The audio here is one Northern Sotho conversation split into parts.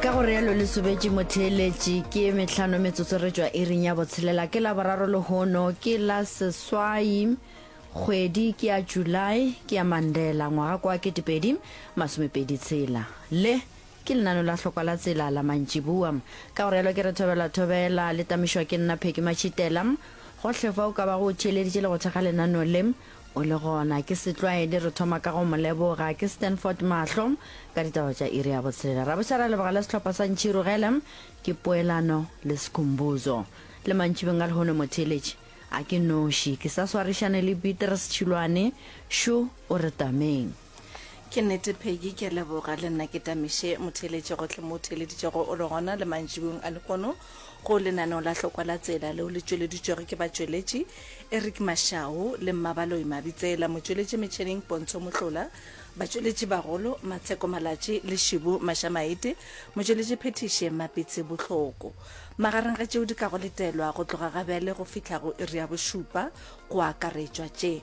ka go realo le sobetše motheeletši ke metlhano metsotso re tšwa iring ya botshelela ke la boraro lehono ke la seswai kgwedi ke ya july ke ya mandela ngwaga kwa ketepedi masomepedi tshela le ke lenano la hlokwa la tsela la mantšibua ka go realo ke re thobela thobela le tamišwa ke nna pheki matšhitela gohle fa o ka ba go theeleditše le go thekga lenano le O le gona ke Setlwaedi, re thoma ka go mo leboga. Ke Stanford Mahlo ka ditaba tša iri ya botshelela. Rabošara a leboga le sehlopha sa Ntšhiru Gelem. Ke Poelano le Skhumbuzo. Le mantšibeng a lehono mo theeletše. A ke noši, ke sa swarišane le Beatrice Tšhilwane. Shu o re tameng. Ke nnete Peggy, ke a leboga. Le nna ke tamiše motheeletše gohle mo o theeleditšego o le gona le mantšiboeng a lehono go lenaneo la hlokwa la tsela leo le tšweleditšwego ke batšweletši Eric Mashau le Mmabaloi Mabitsela, motšweletši metšheneng Pontsho Mohlola, batšweletši bagolo Matsheko Malatši le Shibu Mashamaite, motšweletši phethiši Mmapitsi Bohloko. Magareng ga tšeo di ka go letelwa go tloga ga bjale go fihla go iri ya bošupa go akaretšwa tše.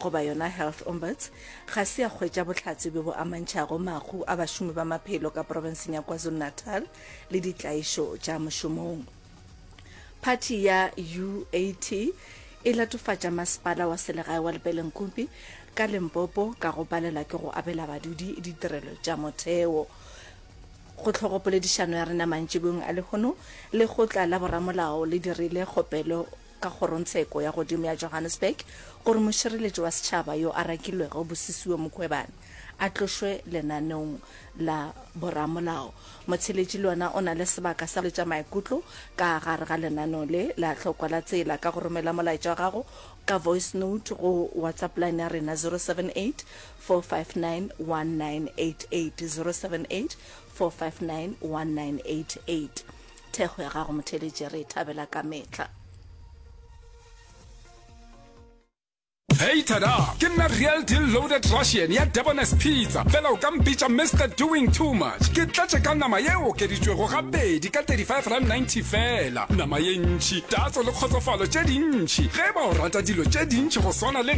goba yona health ombuds ga se ya kgwetša bohlatse bjo bo amantšhago mahu a bašomi ba maphelo ka porofenseng ya kwazulu-natal le ditlaišo tša mošomong phathi ya uat e latofatša masepala wa selegae wa lepelenkupi ka lempopo ka go palela ke go abela badudi ditirelo tša motheo go tlhogo poledišano ya rena mantšibong a lehono lekgotla la boramolao le dirile kgopelo ka Kgorongtsheko ya godimo ya Johannesburg gore mošireletši wa setšhaba yo a rakilwego Busisiwe Mukhwebane a tlošwe lenaneong la boramolao. Motheletši le ona o na le sebaka sa go hweletša maikutlo ka gare ga lenaneo le la hlokwa la tsela ka go romela molaetša wa gago ka voice note go WhatsApp line ya rena 078 459 1988, 078 459 1988. thekgo ya gago motheletše re e thabela ka metlha Hey tada, ke nna real deal loaded Russian ya Debonair's Pizza. Fela o ka mpitša Mr Doing Too Much. Ke tlatše ka nama ye okeditšwego gabedi ka 35 rand 90 fela. Nama ye ntši, tatso le kgotsofalo tše dintši. Ge ba o rata dilo tše dintši go swana le